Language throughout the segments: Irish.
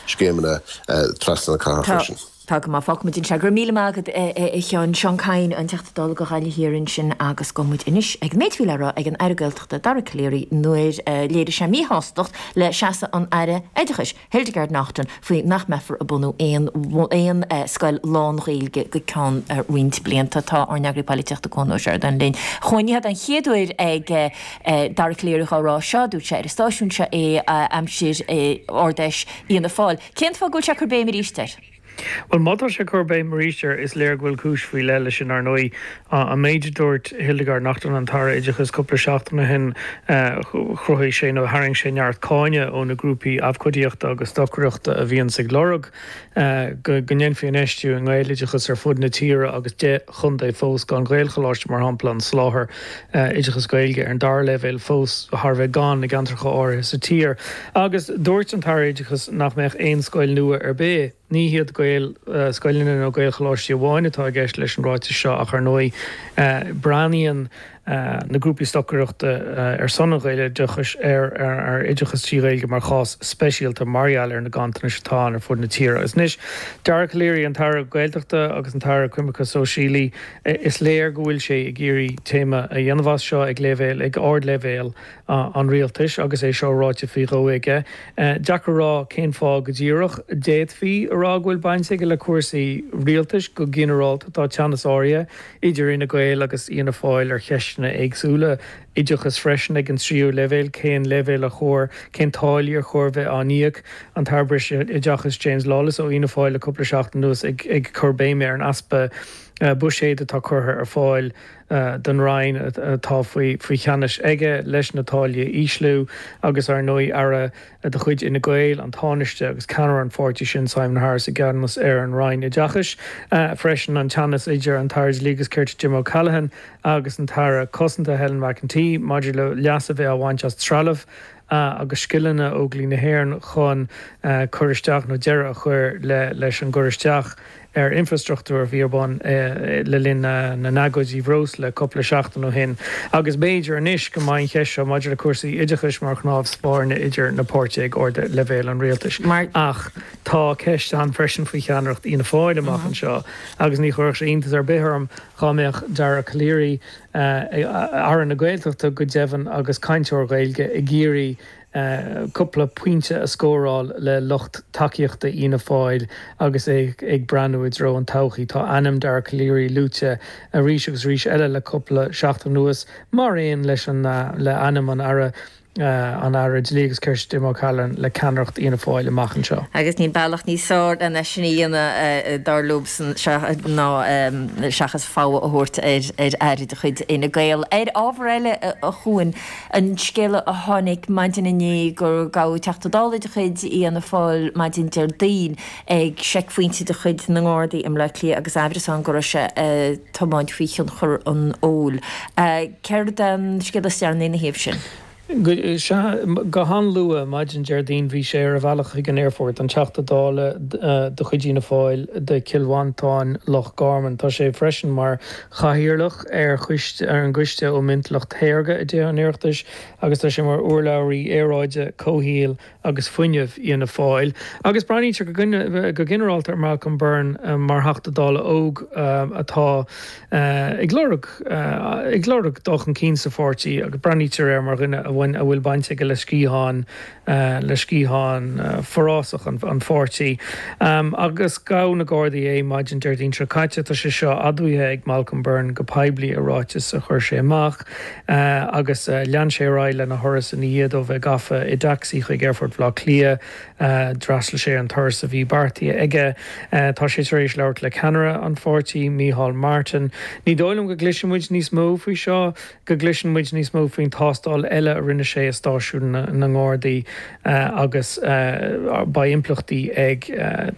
scéimeanna trasna na cathrach freisin. Tá go maith, fágfaidh muid ansin é. Go raibh míle maith agat a Sheáin. Seán Kyne an Teachta Dála do Ghaillimh Thiar ansin agus gabhfaidh muid anois ag an méid a bhí le rá ag an Aire Gaeltachta Dara Calleary nuair a léirigh sé míshástacht le seasamh an Aire Oideachais Hildegarde Naughton faoi nach mbeifear ag bunú aon scoil lán-Ghaeilge go ceann roinnt blianta. Tá ár n-eagraí polaitíochta Cuan Ó Seireadáin linn. A Chuain, ní hé an chéad uair ag. Dara Calleary á rá seo, dúirt sé ar an stáisiún seo é aimsir Ard-Fheis Fhianna Fáil. Cén fáth go bhfuil sé ag cur béim aríst air? Bhuel, má tá sé ag cur béim aríst air, is léir go bhfuil cúis faoi leith leis sin, ar ndóigh. An méid a dúirt Hildegarde Naughton, an tAire Oideachais, cúpla seachtain ó shin, chruthaigh sé, nó tharraing sé neart cáineadh ó na grúpaí abhcóidíochta agus stocaireachta a bhíonns ag lorg, go ndéanfaí infheistiú i nGaeloideachas ar fud na tíre agus deich gcontae fós gan Ghaelcholáiste, mar shampla, an soláthar oideachais Gaeilge ar an dara leibhéal fós thar a bheith gann i gceantracha áirithe sa tír. Agus dúirt an tAire Oideachais nach mbeidh aon scoil nua ar bith. Ní hiad Gaelscoileanna nó Gaelcholáistí amháin atá i gceist leis an ráiteas seo ach, ar ndóigh, breathnaíonn. na grúpaí stocaireachta ar son an Ghaeloideachais ar oideachas trí Ghaeilge mar chás speisialta mar gheall ar na ganntanais atá ann ar fud na tíre agus anois Dara Calleary, an tAire Gaeltachta agus an tAire Coimirce Sóisialaí, is léir go bhfuil sé ag iarraidh téama a dhéanamh as seo ag leibhéal, ag ardleibhéal an rialtais agus é seo ráite faoi dhó aige. Deacair a rá cén fáth go díreach. D'fhéadfaí a rá go bhfuil baint aige le cúrsaí rialtais go ginearálta, tá teannas áirithe idir Fhine Gael agus Fhianna Fáil ar cheisteanna éagsúla, oideachas freisin ag an tríú leibhéal, cén leibhéal ar chóir, cén táillí ar chóir bheith á n-íoc, an tAire Breis Oideachais James Lawless ó Fhianna Fáil le cúpla seachtain anuas ag cur béime ar an easpa buiséid atá curtha ar fáil don Roinn atá faoi cheannas aige leis na táillí a ísliú agus ar ndóigh Aire de chuid Fhine Gael, an Tánaiste agus ceannaire an pháirtí sin, Simon Harris, i gceannas ar an Roinn Oideachais freisin, an teannas idir an tAire Dlí agus Cirt Jim O'Callaghan agus an tAire Cosanta Helen McEntee maidir le leas a bheith á bhaint as trealamh agus scileanna Óglaigh na hÉireann chun cur isteach nó deireadh a chur le leis an gcur isteach ar infreastruchtúr a bhí ar bun le linn na n-agóidí breosla cúpla seachtain ó shin agus b'fhéidir anois go mbeidh an cheist seo maidir le cúrsaí oideachais mar chnámh spairne idir na páirtithe ag ardleibhéal an rialtais. Ach tá ceist ann freisin faoi cheannaireacht Fhianna Fáil amach anseo agus ní chuirfeadh sé iontas ar bith orm dhá mbeadh Dara Calleary, Aire na Gaeltachta go deimhin agus cainteoir Gaeilge, ag iarraidh, cúpla pointe a scóráil le lucht tacaíochta Fhianna Fáil agus é ag breathnú i dtreo na todhchaí. Tá ainm Dara Calleary luaite arís agus arís eile le cúpla seachtain anuas, mar aon leis le ainm an Aire an Aire Dlí agus Cirt, Jim O'Callaghan, le ceannaireacht Fhianna Fáil amach anseo. Agus níl bealach níos fearr lena sin a dhéanamh, dar liomsan, ná seachas fogha a thabhairt ar Aire de chuid Fhine Gael. Ar ábhar eile a chuaigh. An scéal a tháinig maidin inné gur gabhadh Teachta Dála de chuid Fhianna Fáil maidin Déardaoin ag seicphointe de chuid na nGardaí i mBleá Cliath agus amhras ann go raibh sé ag tiomáint faoi thionchar an óil. Céard é an scéal is deireanaí ina thaobh sin? Go han-luath maidin Déardaoin bhí sé ar a bhealach chuig an aerfort, an Teachta Dála de chuid Fhianna Fáil do Chill Mhantáin-Loch Garman. Tá sé freisin mar Chathaoirleach ar an gCoiste um Intleacht Shaorga i dTithe an Oireachtais agus tá sé mar urlabhraí aeráide, comhshaoil agus fuinnimh Fhianna Fáil, agus breathnaítear go ginearálta ar Malcolm Byrne mar Theachta Dála óg atá ag lorg, ag lorg dul chun cinn sa pháirtí agus breathnaítear air mar dhuine a bhfuil baint aige le sciathán le sciathán forásach an pháirtí, agus ghabh na Gardaí é maidin Déardaoin seo caite. Tá sé seo admhaithe ag Malcolm Byrne go poiblí i ráiteas a chuir sé amach, agus lean sé ar aghaidh lena thuras ina dhiaidh dó a bheith gafa i dtacsaí chuig Aerfort Bhaile Átha Cliath. D'fhreastail sé an turas a bhí beartaithe aige. Tá sé tar éis labhairt le ceannaire an pháirtí, Micheál Martin. Ní dóigh liom go gcloisfidh muid níos mó faoi seo. go gcloiseann muid níos mó faoin tástáil eile a rinne sé i stáisiún na nGardaí agus beidh impleachtaí ag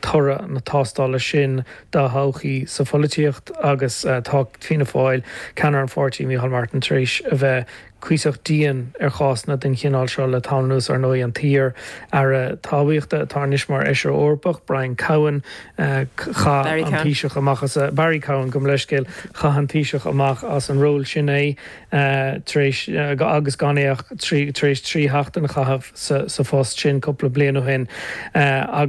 toradh na tástála sin dá thodhchaí sa pholaitíocht agus tá Fianna Fáil, ceannaire an pháirtí, Micheál Martin, tar éis a bheith cuíosach dian ar chásanna den chineál seo le tamall anuas. Ar ndóigh, an t-iar-aire talmhaíochta atá anois mar fheisire Eorpach, Brian Cowen, Chaith an Taoiseach amach as a, Barry Cowen, gabh mo leithscéal, chaith an Taoiseach amach as an ról sin é tar éis, agus gan é ach trí, tar éis trí sheachtain a chaitheamh sa phost sin cúpla bliain ó shin.